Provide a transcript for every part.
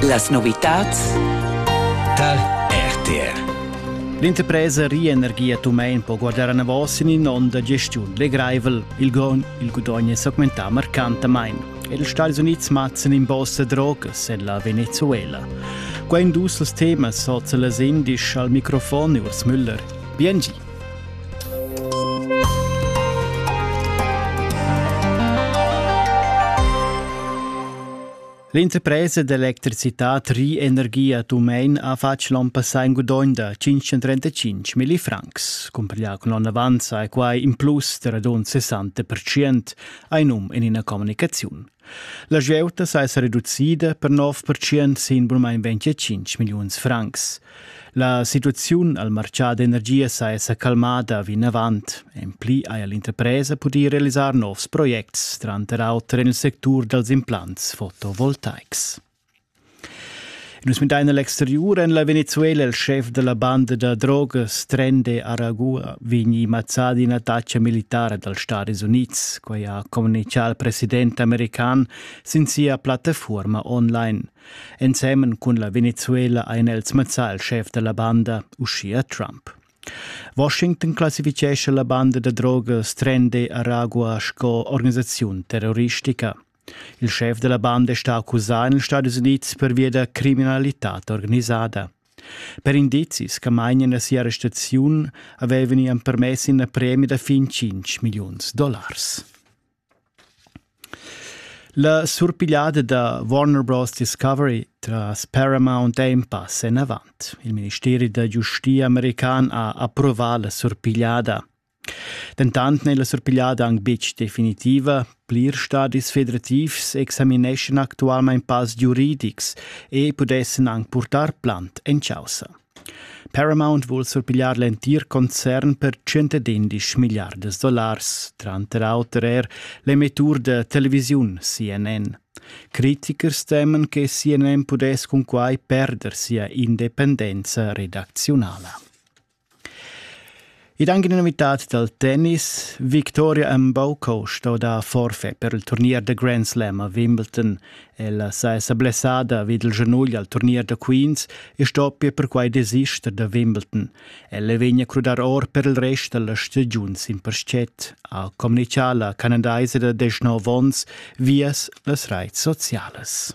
Las novitads tal RTR L'interpresa Rienergie Tumein po guardare anavos in inonda gestiun legraivel. Il gon il gudogn è segmentà marcantamain. Els Stati Uniti mazzan in bossa drogas en la Venezuela. Quai dus els temas soz las indisch al microfon Urs Müller. Bien L'interpresa d'electricitad Rienergia Tumein ha fatg l'on passà in gudogn da 535 milli francs. Cumpiglià cun l'onn avanza è quai in plus da radund 60% ha num en ina communicaziun. La gieuta s'esa reducida per 9% sin bunmain 25 milliuns francs. La situaziun al marchà d'energia s'esa calmada vinavant. En pli haja l'interpresa pudì realisar novs projects, tranter auter en il sectur dals implants fotovoltaics. Nus muntain a l'exteriur en la Venezuela il schef da la banda da drogas Trende Aragua vegni mazzà d'ina attacca militara dals Stati Unids, quai ha communitgà il president american sin sia plattafuorma online. Ensemen cun la Venezuela ein els mazzà il schef da la banda, uschia Trump. Washington classifichescha la banda da drogas Trende Aragua sco organisaziun terroristica. Il schef della banda è stà accusà en ils Stati Unids pervia da criminalitad organisada. Per indizis che mainian a sia arrestaziun avevano gli permess una premia da fin 5 milioni dollars. La surpigliata da Warner Bros. Discovery tras Paramount è in passo in avanti. Il ministero da giustizia american ha approvato la surpigliata. Dentant n'è la surpigliada anc betg definitiva. Plirs stadis federativs examineschan actualmain pass giuridics e pudessan anc purtar plant en chaussa. Paramount vul surpigliar l'entir concern per 111 milliardas dollars, tranter auter er l'emettur da televisiun CNN. Critichers temen che CNN pudess cun quai perder sia independenza redacziunala. Ed anche in unitad dal tennis, Victoria Mboko sto dar forfait per il turnier da Grand Slam a Wimbledon. Ella saja blessada vid il genugl al turnier da Queens e stoppia perquai desister da Wimbledon. Ella vegnia a crudar or per il rest da la stagiun sin purschet, ha communichà la canadaisa da 19 onns vias las raits socialas.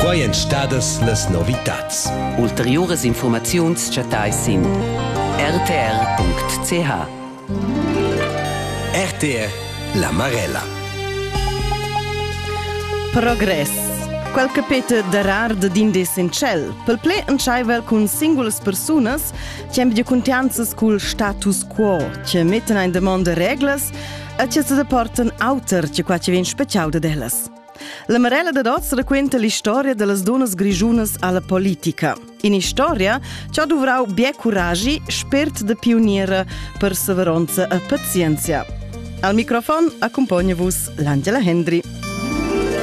Quai èn stadas las novitads. Ulteriuras infurmaziuns chattais sin rtr.ch. RTR La Marella. Progress. Quel che peta darar din d'essenzial. Per ple entschaivel cun singulas persunas che amb di contianzas cul status quo, che mettan in demonda reglas e che se deportan auter che qua che vien special de dellas. La Marella dad oz raquenta l'istoria dallas dunnas grischunas alla politica. In'istoria che ha duvrau bia curagi, spért da pioniera, perseveronza e pazienzia. Al microfon accompagna vus l'Angela Hendry.